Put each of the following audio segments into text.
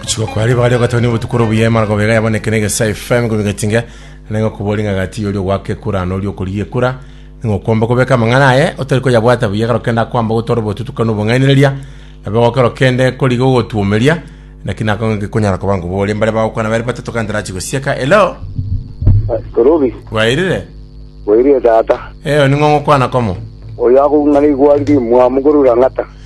Gochika kwari bare ogateba ni obotuko oro buya emara gobega yaboneke na egesa FM gobe gatinga nengo kubori nga gati yori ogwaka ekura na ori okorigia ekura ningo kwomba kobeka amang'ana aye otari koyabwata buya ekero kende akwamba gotwara obotutukanu obong'ainereria nabe gokero kende koriga ogotwomeria naki nako gekonyara koba ngo bore mbare bagokwana bare batato kante rachi gosieka hello Korobi, wairire oirie tata. eh ning'o ngokwana komo Oyo akung'ana igwari rimwamu korura ng'ata.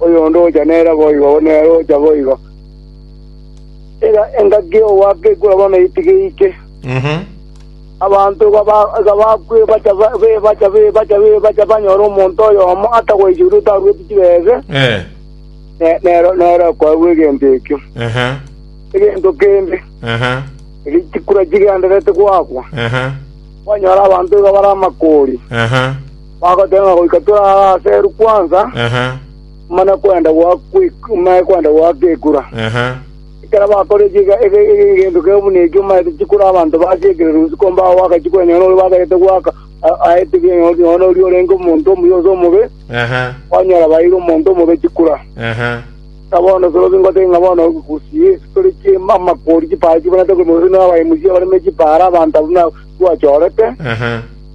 Oyonde ogocha nere boigo, oyo nere ogocha boigo. Iga engaki y'ogwaka ekura bono eitiga eike. Abanto iga ba- iga bakwa ebacha ba- b'ebacha b'ebacha b'ebacha banyore omonto oyomo atagoichorwa otarueti chibese, Eh. ne- nero nero akoegwa egento ekio. Aha. Egento kende, Aha. erio chikura chigendererete gwakwa, Aha. kwanyora abanto iga bare amakori. Aha. Bagoteba ng'a goika tore aa aseru kwansa, Aha, omanye kwenda gwa kwik- omanye kwenda gwa gekura. aha. Ekero bakora eki ege- ege- ege- egento kebe buna ekio, omanyete chikura abanto basiekire rusi komba ago gwaka chikura nonya noria baberete gwaka a- aete bi- nonya nonya noria orenge omonto omuya ase omobe, Aha, kwanyora baeire omonto omobe chikura. aha. Na bono soro bingotebia ng'a bono gusii tore chiema amakori chipara chibonete korwa mobe buna abaemusia bareme chipara abanto abwo na- bwachorete, Aha,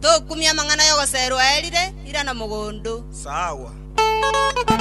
Tokumia amang'ana y'ogoseerwa aa erire ira na mogondo. Sawa.